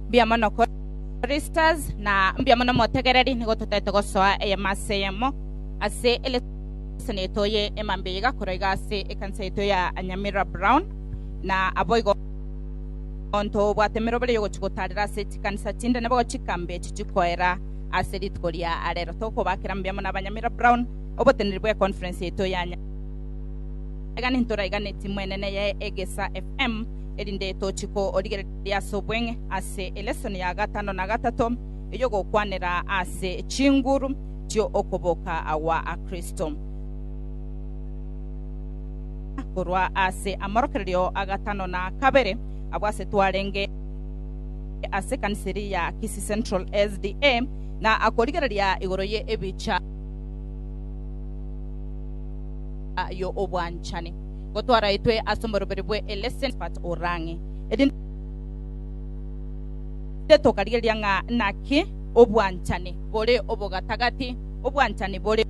Mbuya mono Choristers, na mbuya mono motegereri, nigo totaete gosoa eyemo ase eyemo ase eleseni yaito ye emambia iga korwa iga ase ekanisa yaito ya Nyamira Brown, na aboigo ntobwate emerobera y'ogochia gotaarera ase chikanisa chinde nabo chikambe echi chikoera ase rituko ria arero. Tokobakera mbuya mono Abanyamira Brown oboteneri bwe conference yaito ya Nya- egani ntoraiganetie mwenene ye Egesa FM erinde tochie korigereria riasobweng'e ase elesoni ya gatano na gatato ey'ogokwanera ase chinguru chi'okoboka agwa a Kristo, korwa ase amorokererio a gatano na kabere abwo ase twarenge ase ekanisa eria ya Kisii Central SDA, na akorigereria igoro ye ebicha y'obwanchani. gotwaraetwe ase oborobori bwe Elesenfat o Rang'e, erinde tokarigereria ng'a naki obwanchani bore obogatagati, obwanchani bore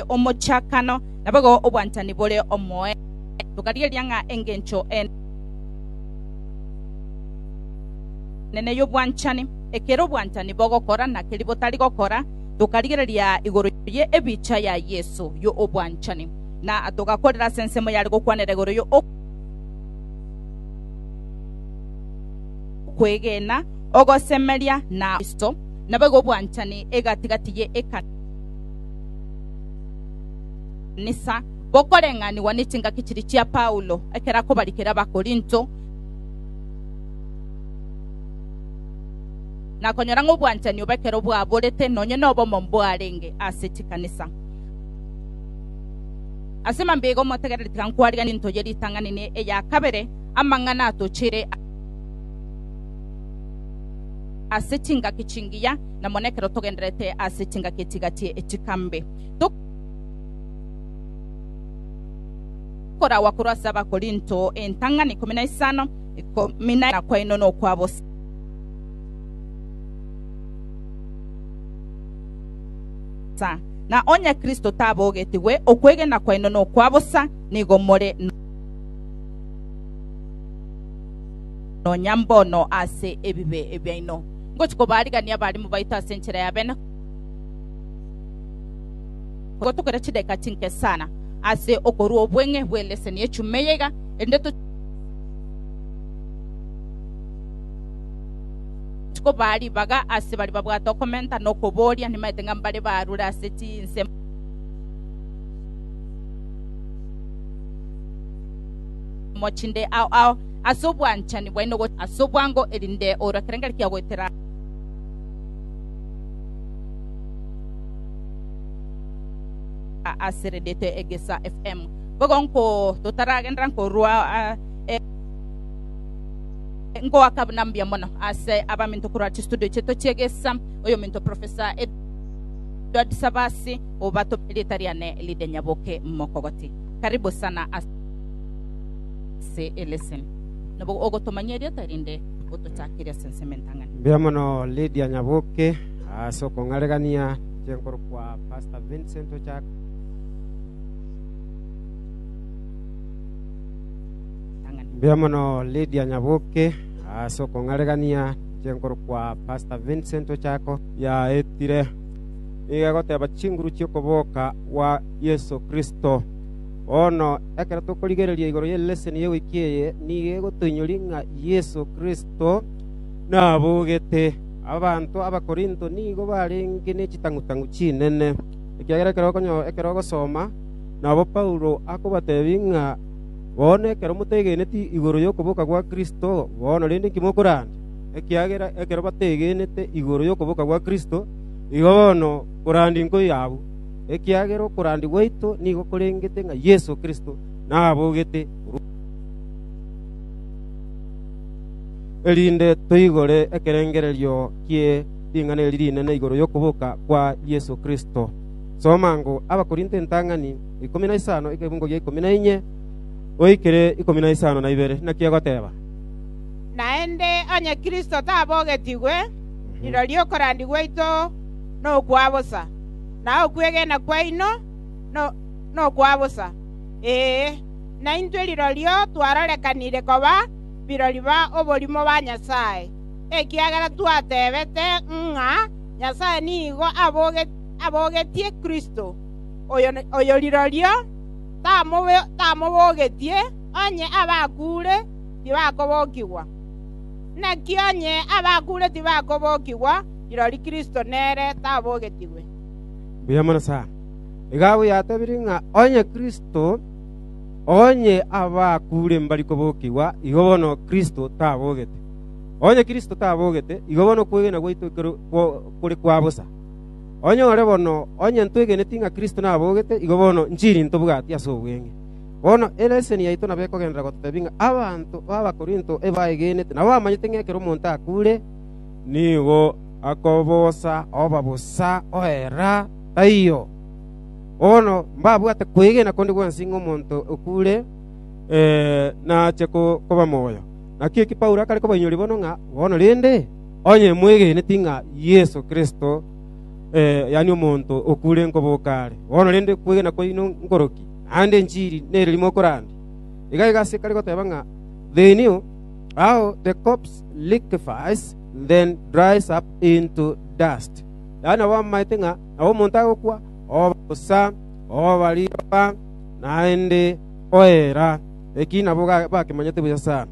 omochakano, na boigo obwanchani bore omoerio, tokarigereria ng'a engencho enene y'obwanchani, ekero obwanchani bogokora na keria botari gokora, tokarigereria igoro ye ebicha ya Yeso yo obwanchani, na togakorera ase ensemo yare gokwanera igoro yo okwegena, ogosemeria, na Kristo, naboigo obwanchani egatigati ye ekanisa, bokoreng'anigwa ne chingaki chiria chia Paulo ekero akobarikera Abakorinto. na konyora ng'a obwanchani obo ekero bwaborete nonye nobomo mbwarenge ase chikanisa. Ase mambia omotegereri tiga nkwarigie into ye ritang'ani ne eya kabere, amang'ana atochire ase chingaki chingiya na mono ekero togendererete ase chingaki chiga chie chikambe. Koragwa korwa ase Abakorinto entang'ani ikomi na isano, ikomi na kwaino nokwa bosa. bosa, na onye Kristo tabogetigwe, okwegena kwaino nokwa bosa, nigo more nonya mbono ase ebibe ebiaino. Ngochia kobarigania abarimu baito ase enchera ya bene gotokera chideka chinke sana ase okorua obweng'e bw'eleseni y'echuma eyeiga, erinde to Tikobaa ribaga ase baria babwate okomenta na okoboria, nimaete ng'a mbare barure ase chinsemo. chinde ao ao ase obwanchani bwaino ase obwango erinde orwa kerengari kia goetera ase redete egesa fm bogo nko totaragendera nkorwa uh, Ngoaka buna mbuya mono ase abaminto korwa chistudio chiaito chi'egesa, oyominto Professor Edward Sabasi, obatome rieta riane Lydia Nyaboke Mokogoti. Karibu sana ase eleseni. Nabo ogotomanyia erieta erinde otochakire ase ensemo entang'ani. Mbuya mono Lydia Nyaboke ase okong'aregania inche nkorokwa Pastor Vincent Ochaka. Mbuya mono Lydia Nyaboke ase okong'aregania inche nkorokwa Pastor Vincent Ochako. Yaetire nigo egoteba chinguru chi'okoboka gwa Yeso Kristo. Bono ekero tokorigereria igoro ye leseni ye wiki eye nigo egotoinyoria ng'a Yeso Kristo nabogete. Abanto Abakorinto nigo barenge ne chitang'u-tang'u chinene, ekiagera ekero ogosoma nabo Paulo akobatebia ng'a Bono ekero motegeneti igoro y'okoboka gwa Kristo, bono rende inki mokorenda? Ekiagera ekero bategenete igoro y'okoboka gwa Kristo, igo bono korandi nkoi abwo, ekiagera okorandi gwaito nigo korengete ng'a Yeso Kristo nabogete korwa amo, erinde toigore ekerengererio kie ring'ana eri rinene igoro y'okoboka kwa Yeso Kristo. Soma ngo Abakorinto entang'ani ikomi na isano ekebungo gia ikomi na inye goikire ikomi na isano na ibere, naki egoteba, Naende onye Kristo tabogetigwe, rirorio okorandi gwaito nokwa bosa, na okwegena kwaino nokwa bosa. Ee, naintwe rirorio twarorekanire koba birori ba oborimo ba Nyasae, ekiagera twatebete ng'a Nyasae nigo abogetie Kristo. oyo rirorio tamobogetie, onye abakuure tibakobokigwa. Naki onye abakuure tibakobokigwa, rirorio Kristo nere tabogetigwe. Mbuya mono sana. Iga abwo yatobirie ng'a onye Kristo, onye abakuure mbari kobokigwa, igo bono Kristo tabogete. Onye Kristo tabogete, igo bono okwegena gwaito kore kwa bosa. Onyore bono, onye ntwegeneti ng'a Kristo nabogete, igo bono nchiri ntobwati ase obweng'e. Bono eleseni yaito nabo ekogenderera gototebia ng'a abanto b'Abakorinto ebaegenete na bamanyete ng'a ekero omonto akure, nigo akobosa oba bosa oera. Taiyo. Bono mbabwate kwegena konde gwensi ng'a omonto okure nache koba moyo. Naki eki Paulo akare kobainyoria bono ng'a, Bono rende, Onye mwegeneti ng'a Yeso Kristo, yaani omonto okure nkoboka are, bono rende kwegena kwaino nkoroki, naende enchili nereri mokorande. Iga igo ase kare goteba ng'a, They knew how the corpse liquefies, then dries up into dust, yaani nabo bamaete ng'a nabo omonto agokwa, oba bosa, oba riroba, naende oera, lakini nabo bakemanyete buya sana.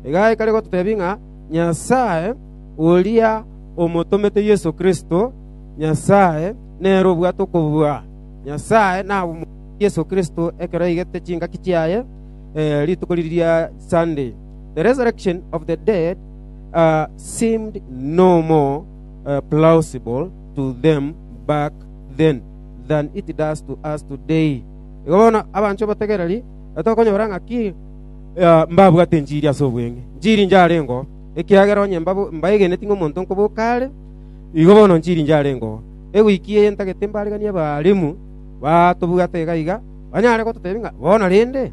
Iga aye kare gototebia ng'a, Nyasae, oria omotomete Yeso Kristo, Nyasae nere obwate okobua. Nyasae nabomoeire Yeso Kristo ekero aigete chingaki chiaye rituko riria Sunday, the resurrection of the dead seemed no more plausible to them back then than it does to us today. Igo bono abanchwa bategereri, tokonyora ng'aki mbabwate enchiri ase obweng'e, nchiri inche arengeo, ekiagera onye mbaegeneti ng'a omonto nkoboka are, igo bono nchiri inche arengeo. Eweek eye ntagete mbareganie abaalimu batobwate iga iga, banyare gototebia ng'a bono rende.